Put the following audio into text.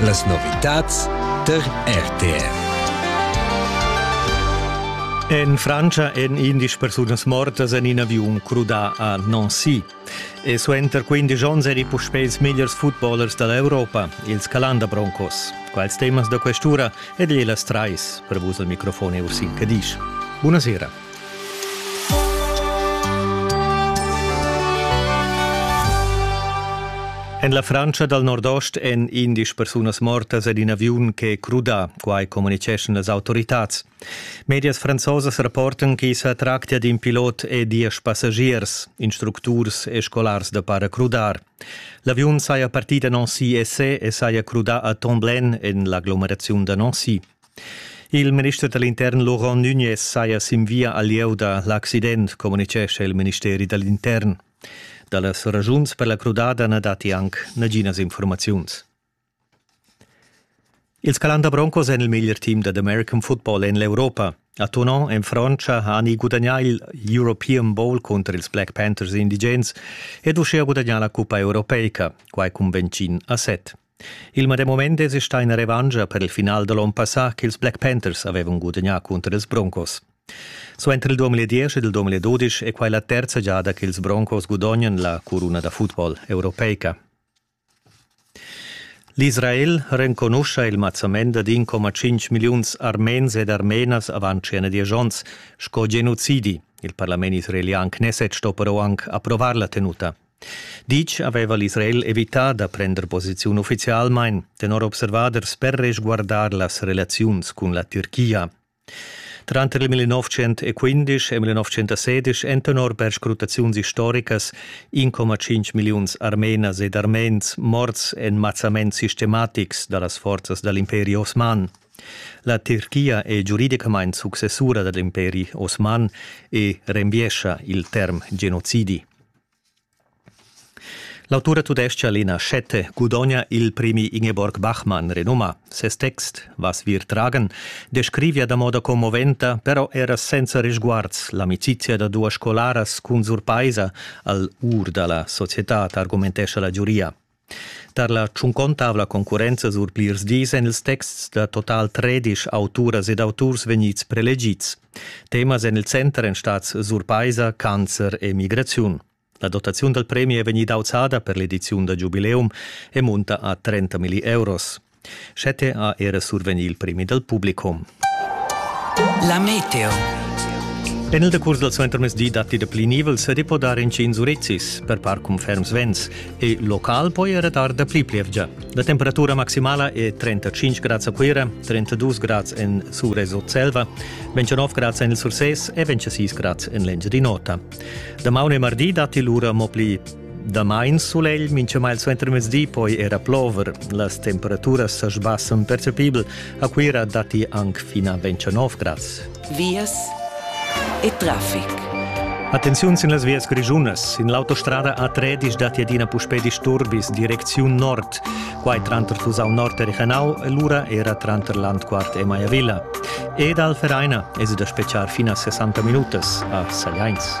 Las novitads der RTR. En Francia èn 11 persunas mortas en in aviun crudà a Nancy. E suenter 15 onns eri puspè ils megliers footballers da l'Europa, ils Calanda Broncos. Quals temas da quest'ura ed e las trais per vus al microfon è Ursin Cadisch. Buonasera. En la Frantscha dal nordost èn indisch persunas mortas ed in aviun ch'è crudà, quai communitgeschan las autoritads. Medias franzosas rapportan ch'i sa tractia d'in pilot e diesch passagiers, instructurs e scolars da paracrudar. L'aviun saja partì da Nancy e se e saja crudà a Tomblaine en l'aglomeraziun da Nancy. Il minister da l'intern Laurent Nunez saja sin via al lieu da l'accident, communitgescha il ministeri da l'intern. Da las ragiuns per la crudada na datti anc naginas informaziuns. Ils Calanda Broncos èn il meglier team dad American football en l'Europa. A Tonon en Frantscha hani gudagnà il European Bowl cunter ils Black Panthers indigens ed uschia gudagnà la cuppa europeica, quai cun Bencin a set. Il medem mument esi stà ina revantscha per il final da l'onn passà ch'ils Black Panthers avevan gudagnà cunter ils Broncos. Suenter il 2010 ed il 2012 è quai la terza giada ch'ils Broncos gudognan la curuna da football europeica. L'Israel renconuscha il mazzament da 1,5 milliuns armens ed armenas avant tschena diesch onns sco genocidi. Il parlament israelian Knesset sto però anc approvar la tenuta. Ditg aveva l'Israel evità da prender posiziun uffizialmain, tenor observaders per resguardar las relaziuns cun la Türchia. Tranter il 1915 e 1916 èn tenor perscrutaziuns istoricas 1,5 milliuns armenas ed armens morts en mazzaments sistematics da las forzas da l'imperi osman. La Türchia è giuridicamain successura da l'imperi osman e renviescha il term genocidi. L'autura tudescha Lena Schette gudogna il premi Ingeborg Bachmann renumà. Ses text Was wir tragen descrivia da moda commoventa, però era senza risguards l'amicizia da duas scolaras cun surpaisa al ur da la societad, argumentescha la giuria. Tar la tschuncontavla concurrenza sur plirs dis èn ils texts da total tredisch auturas ed auturs vegnids prelegids. Temas en il center èn stads surpaisa, cancer e migraziun. La dotaziun dal premi è vegnida auzada per l'ediziun da giubileum e munta a 30 milli euros. Schette ha era survegni il premi dal publicum. La meteo. En il decurs dal suentermezdi datti da pli nivel se può dar in cin Zurezzis, per par cum ferms vents, e local poi era dar da pli plievgia. La temperatura maximala è 35 grad a Cuira, 32 grad en Sures Selva, 29 grad en il Surses e 26 grad en l'Engiadin'Ota. Da maune e mardi datti l'ura mo pli Damain sulegl minchamai suentermezdi poi era plover. Las temperaturas sa sbassan percepibel. A Cuira datti anc fin a 29 grads. Vias e traffic. Attenziun sin las vias grischunas. In l'autostrada A3 datti adina puspè disturbis direcziun nord. Quai tranter Tusau Nord e Richenau e lura era tranter Landquart e Maiavilla. Ed al Vereina es da speciar fin a 60 minutas a Sagliains.